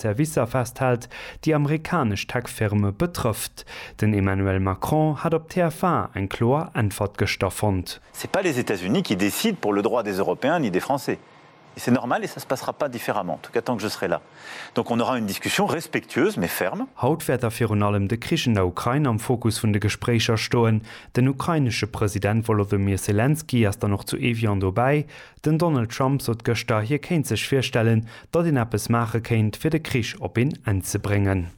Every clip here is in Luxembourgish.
Servicer festhält, déi amerikanesch Tech-Firme betrëfft. Den Emmanuel Macron hat op TF1 eng kloer Äntwert gëschter fonnt. C'est pas les États-Unis qui décident pour le droit des Européens ni des Français. Et c'est normal et ça se passera pas différemment, en tout cas tant que je serai là. Donc on aura une discussion respectueuse mais ferme. Haut wäert da virun allem de Krich an der Ukrain am Fokus vun de Gespréicher stoen. Den ukrainesche President Wolodymyr Selenskyj ass dann och zu Evian dobäi. Den Donald Trump sot gëschter, hie kéint sech virstellen, datt een eppes maache kéint, fir de Krich op een Enn ze bréngen.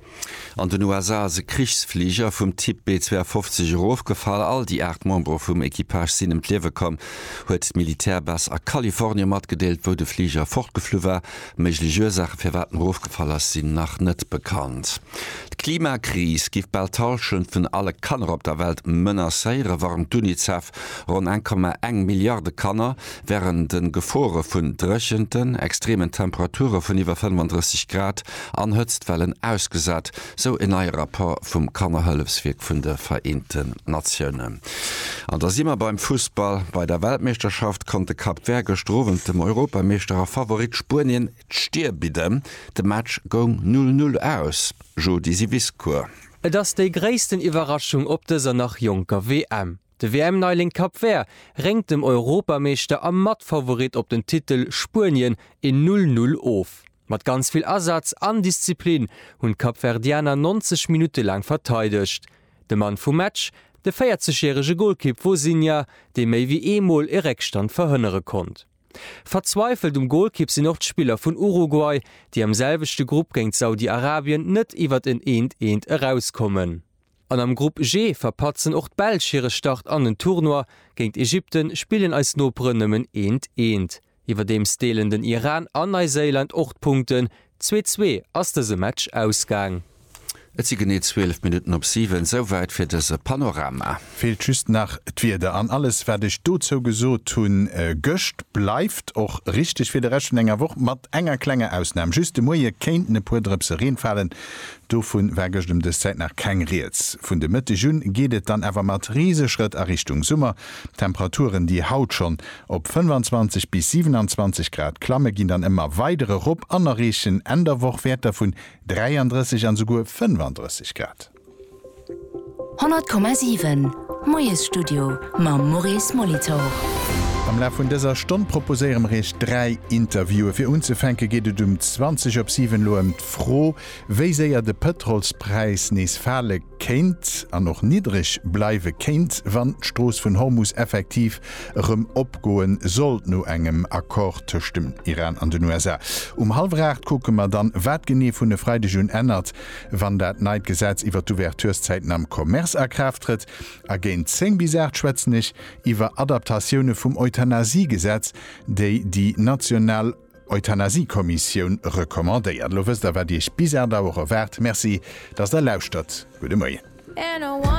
An den USA ass e Krichsfliger vum Typ B-52 erofgefall. All déi 8 Membere vum Equipage sinn ëm d'Liewe komm, huet d'Militärbass a Kalifornie matgedeelt, wou de Fliger fortgeflu war. Méiglech Ursaache firwat en erofgefall ass, sinn nach net bekannt. D'Klimakris giff bal d'Hallschent vun alle Kanner op der Welt menacéieren, warnt d'UNICEF. Ronn 1,1 Milliarde Kanner wären de Gefore vun Dréchenten, extremen Temperature vun iwwer 35 Grad an Hëtztwellen ausgesat, sou en neie Rapport vum Kannerhëllefswierk vun de Vereenten Natiounen. An da si mer beim Fussball. Bei der Weltmeeschterschaft konnt de Cap Vert gëschter Owend dem Europameeschter a Favorit Spuenien d'Stir bidden. De Match goung 'Null Null' aus, Jodi Siviscourt. Et ass déi gréissten Iwwerraschung op dëser nach jonker WM. De WM-Neiling Cap Vert réngt dem Europameeschter a Matfavorit op den Titel Spuenien een Null Null of. Mat ganz vill Asaz an Disziplin hunn d'Kapverdianer 90 Minutte laang verteidegt. De Mann vum Match, de 40 järege Golkipp Vozinha, dee méi wéi ee Mol e Réckstand verhënnere konnt. Verzweifelt um Golkipp sinn och d'Spiller vun Uruguay, déi am selwechte Grupp géint Saudi-Arabien net iwwert en eent eent erauskommen. An am Grupp G verpatzen och d'Belsch hire Start an den Tournoi, géint Ägypten spillen eis Noperen nëmmen eent eent. Iwwerdeems deelen den Iran an Neiséiland och d'Punkten, zwee zwee ass dëse Match ausgaang. Et si genee 12 Minutten op 7. Souwäit fir dëse Panorama. Feelt just nach d'Wieder. An alles wat ech dozou gesot hunn gëscht bleift och richteg fir de Rescht vun enger Woch, mat enger klenger Ausnam, just de Moie kéinten e puer Drëpse Reen falen. Dovu war gëscht ëm dës Zäit nach keng Rieds. Vun de Mëtteg un geet et dann awer mat Riseschrëtt a Richtung Summer. D'Temperaturen, déi haut schonn op 25 bis 27 Grad klammen, ginn dann ëmmer weider erop an erreechen Enn der Woch Wäerter vun 33 an esouguer 35 Grad. 100,7 Moiesstudio mam Maurice Molitor. Am Laf vun dëser Stonn proposéiere mer Iech dräi Interviewen. Fir unzefänke geet et um 20 op 7 elo ëm d'Fro, Wéi séier de Pëtrolspräis nees fale kéint an och niddreg bleiwe kéint, wann d'Strooss vun Hormus effektiv erëm opgoe sollt, no engem Accord tëscht dem Iran an den USA. Um hallwer aacht kucke mer dann, wat genee vun e Freideg un ännert, wann dat neit Gesetz iwwer d'Ouvertureszäiten am Commerce a Kraaft trëtt. A géint zéng bis aacht schwätzen ech iwwer Adaptatioune vum Euthanasiegesetz, déi déi national. Euthanasie-Kommissioun recommandéiert. Elo wësst der, wat Iech bis 8 Auer erwaart. Merci, dass der lauschtert. Gudde Moien.